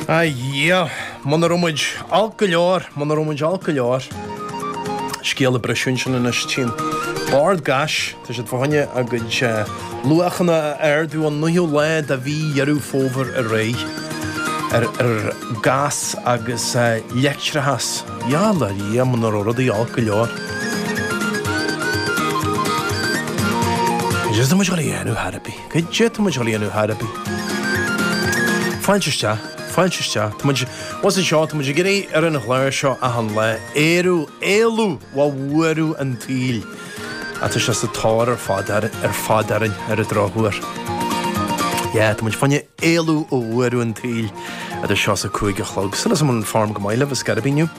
A Dhia, muna raibh muid olc go leor, muna raibh muid olc go leor. Scéal a briseadh ansin anois tinn. Bord Gáis, tá siad fá choinne a gcuid luachanna a ardú ón naoú lá de mhí Dheireadh Fómhair ar aghaidh, ar gás agus leictreachas. Yeah, a Dhia, muna raibh rudaí olc go leor. Is é sin muid chun a dhéanamh ar chor ar bith. Caidé tá muid ag gabháil a dhéanamh ar chor ar bith? Fáilte isteach, fáilte isteach. Tá muid, bhuel anseo, tá muid ag iarraidh ar an chlár seo achan lá, Éiriú, éalú ó bhuaireamh an tsaoil. Ach tá sé sa tóir ar fad orainn ar an drochuair. Yeah, tá muid fá choinne éalú ó bhuaireamh an tsaoil. Idir seo is a cúig a chlog. Súil agam go bhfuil an form go maith libh, ar scor ar bith.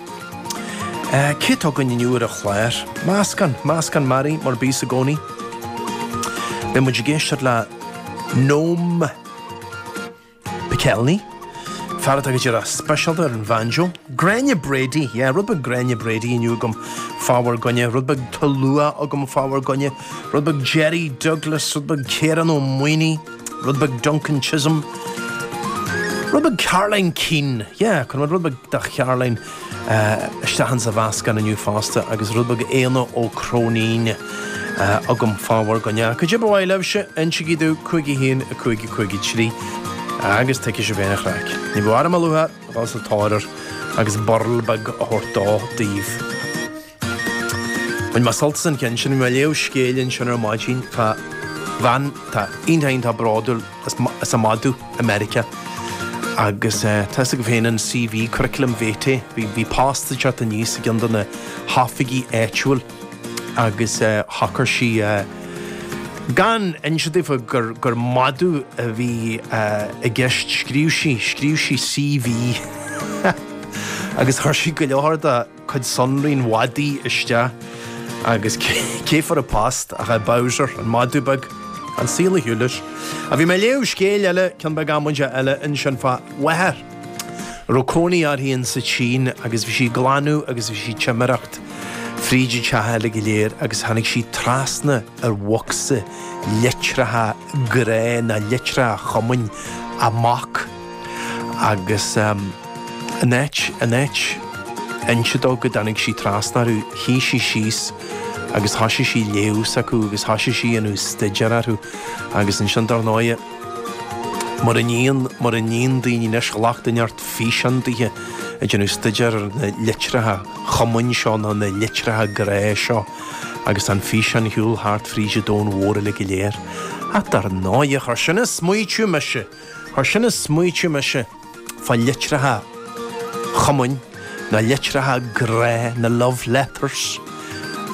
Caidé atá againn inniu ar an chlár? Meascán. Meascán mearaí, mar a bíos i gcónaí. Beidh muid ag éisteacht le Noam Pikelny, fear atá go díreach speisialta ar an bhanjo. Gráinne Brady, yeah, rud beag Gráinne Brady inniu agam fá bhur gcoinne, rud beag Tulua agam fá bhur gcoinne, rud beag Jerry Douglas, rud beag Ciarán Ó Maonaigh. Rud beag Duncan Chisholm. Rud beag Caroline Keane. Yeah, cuirfidh muid rud beag de Charoline isteach insa mheascán inniu fosta agus rud beag Éanna Ó Cróinín agam fá bhur gcoinne. Caidé ba mhaith libhse, insigí domh 51 5 53 agus tuigfidh sibh féin an chraic. Ní bheadh orm ach lúcháir dhul sa tóir air agus burl beag a thabhairt dó daoibh. Bhain mé sult as an cheann sin. Mé ag léamh scéal ansin ar maidin, fá bhean atá iontach, iontach bródúil as a madadh i Meiriceá agus tá fhios agaibh féin an CV, curriculum vitae, bhí post ag teacht aníos i gceann de na hoifigí áitiúil agus shocair sí gan inse daofa gur madadh a bhí i gceist. Scríobh sí, scríobh sí CV agus chuir sí go leor dá. cuid sonraí an mhadaidh isteach agus cé fuair an post ach é Bowser, an madadh beag. An saol a shiúileas. Bhí mé ag léamh scéil eile ceann beag amaideach eile ansin fá mháthair a raibh cónaí uirthi in sa tSín agus bhí sí ag glanadh agus bhí sí ag timireacht fríd an teach uilig go léir agus tháinig sí trasna ar bhocsa litreacha grá nó litreacha chumainn a mac. Agus in áit, in áit inse dó go dtáinig sí trasna orthu, shuigh sí síos agus thoisigh sí léamh s'acu agus thoisigh sí a dhéanamh staidéar orthu. Agus ansin dár ndóighe, mar a ndéan, mar a ndéan daoine anois ghlac duine inteacht físeán dithe ag déanamh staidéar ar na litreacha cumainn seo nó na litreacha grá seo agus tá an físeán ar shiúl thart fríd an domhan mhór uilig go léir. Ach dár ndóighe, chuir sin ag smaoitiú mise! Mar sin a smaoitigh mise fá litreacha cumainn, na litreacha grá, na love letters.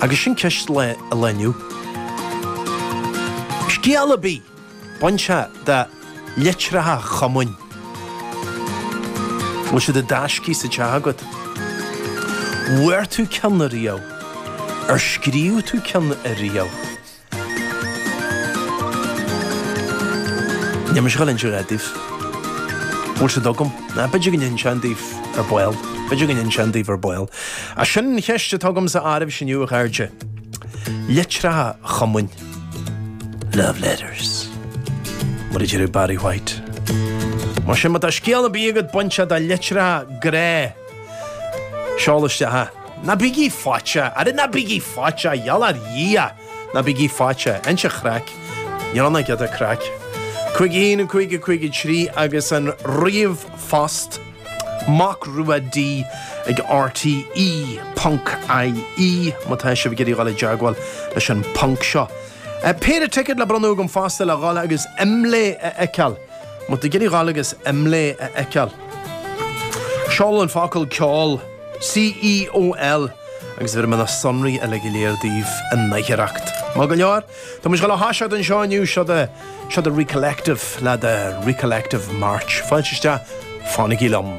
Agus sin ceist an lae inniu. Scéal ar bith bainteach le litreacha cumainn. Bhfuil siad i dtaiscidh sa teach agat? Bhfuair tú ceann riamh? Ar scríobh tú ceann riamh? Níl mise ag gabháil a inse a dhath daoibh. An bhfuil siad agam? Ná, b'fhéidir go n-inseoinn daoibh ar ball. B'fhéidir go n-inseoinn daoibh ar ball. Ach sin an cheist atá agamsa daoibhse inniu, a chairde. Litreacha cumainn. Love letters. Mar a deireadh Barry White. Mar sin, má tá scéal ar bith agat bainteach le litreacha grá, seol isteach é. Ná bígí faiteach! Ara ná bígí faiteach! Gheall ar Dhia ná bígí faiteach! Giota craic. Níl ann ach giota craic. Cúig a haon, cúig a cúig, cúig a trí agus an ríomhphost Mac Rua D ag rte ponc IE má tá sibh ag iarraidh dul i dteagmháil leis an phonc seo. Péire ticead le bronnadh agam fosta le dhul agus Imlé a fheiceáil. Má tá tú ag iarraidh dhul agus Imlé a fheiceáil. Seol an focal ceol. CEOL, agus bhéarfaidh mé na sonraí uile go léir daoibh in aicearracht. Maith go leor. Tá muid ag gabháil a thoiseacht anseo inniu. Seo daoibh Recollective le The Recollective March. Fáilte isteach, fanaigí liom.